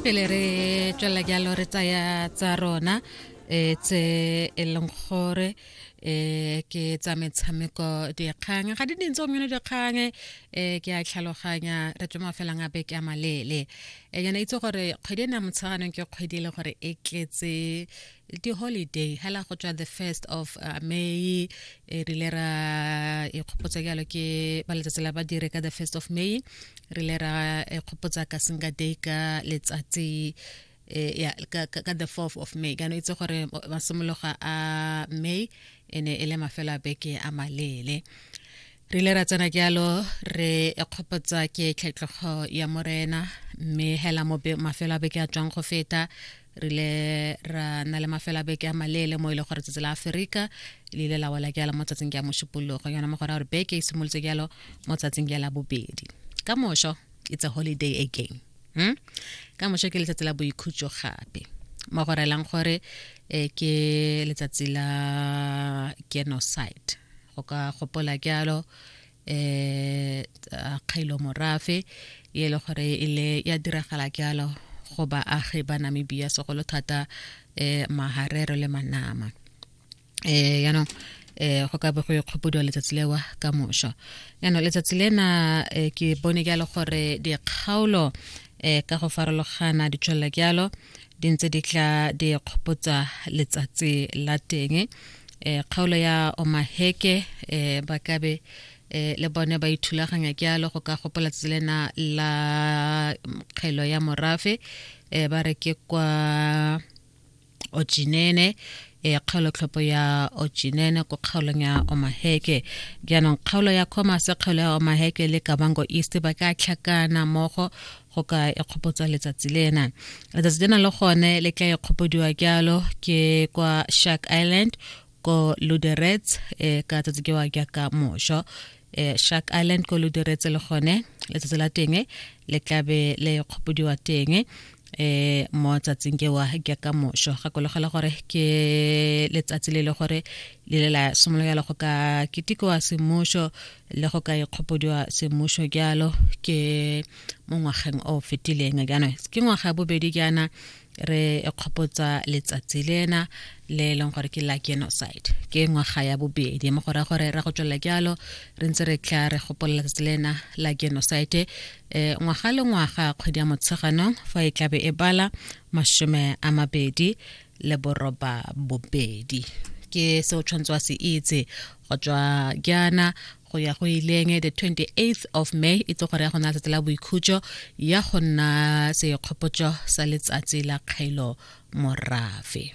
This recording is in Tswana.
pele re tswelela jalo re tsaya tsa rona um tse e leng gore um ke tsa metshameko dikgang ga di dintse gomyone dikgang um ke a tlhaloganya re tswe mafelang a beke a maleele um yana itse gore kgwedi e ne ya motsheganong ke kgwedi e le gore e tletse um di-holiday hela go tswa the first of uh, may e rile ra ikgopotsa jalo ke ba letsatsi la badire ka the first of may re ile ra ikgopotsa ka singa day ka letsatsi Eh, ya ka, ka, ka the 4th of may kana itse gore masimologa a may e ne e le mafelo a beke a malele re ile ra tsena jalo re kgopotsa ke tlhetlhogo ya morena mme hela mafelo a beke a tswang go feta re ile ra na le mafelo a beke a maleele mo e le gore tsatsi la aferika le ile la wela jalo mo tsatsing ya mošupologo yona mo gore a gore beke e simolotse jalo mo tsatsing ya la bobedi ka mošo it's a holiday again hmm? ka mošo ke letsatsi la boikhutso gape mo go relang gore eh, ke letsatsi la genocide o ka gopola jalo eh kgailo morafe e le gore e le ya diragala jalo go baagi ba namibia segolo thata eh maharero le manama eh yaanong eh go ka be go ikgopodiwa letsatsi lewa ka mošwa yaanong letsatsi lena eh, ke bone jalo gore dikgaolo eh ka go farologana di tswelela jalo di ntse di tla di kgopotsa letsatsi la teng e kgaolo ya omaheke e ba kabe e le bone ba ithulaganya ke alo go ka gopola tselena la kgelo ya morafe e ba re ke kwa ojinene e kgaolo tlhopho ya ojinene ko kgaolong ya omaheke jaanong kgaolo ya commerce kgaolo ya omaheke le kabango east ba ka tlhakana mmogo go ka ikgopotsa letsatsi lena letsatsi lena le gone le tla ikgopodiwa jalo ke kwa shark island ko luderets e eh, ka tsatsi ke wa jaaka mošo eh, shark island ko luderets le gone letsatsi la teng le tlabe le kgopodiwa teng eh mo tsatsing ke wa ke ka mosho ga kologela gore ke letsatsi le le gore le le la simolola go ka kitikowa semosho le go ka ikgopodiwa semmušo jalo ke mo ngwageng o fetileng jaanong ke ngwaga bobedi jaana re kgopotsa letsatsi lena le e leng gore ke la genocide ke ngwaga ya bobedi mo go raya gore ra go tswelela jalo re ntse re tla re gopolola letsatsi lena la genocide um ngwaga le ngwaga kgwedi ya motsheganong fa e tlabe e bala masome a mabedi um le boroba bobedi ke se o tshwanetse wa se itse go tswa jaana go ya go ileng the 28th of may e tse gore ya go nna letsatsi la boikhutso ya go nna sekgopotso sa letsatsi la kgailo morafe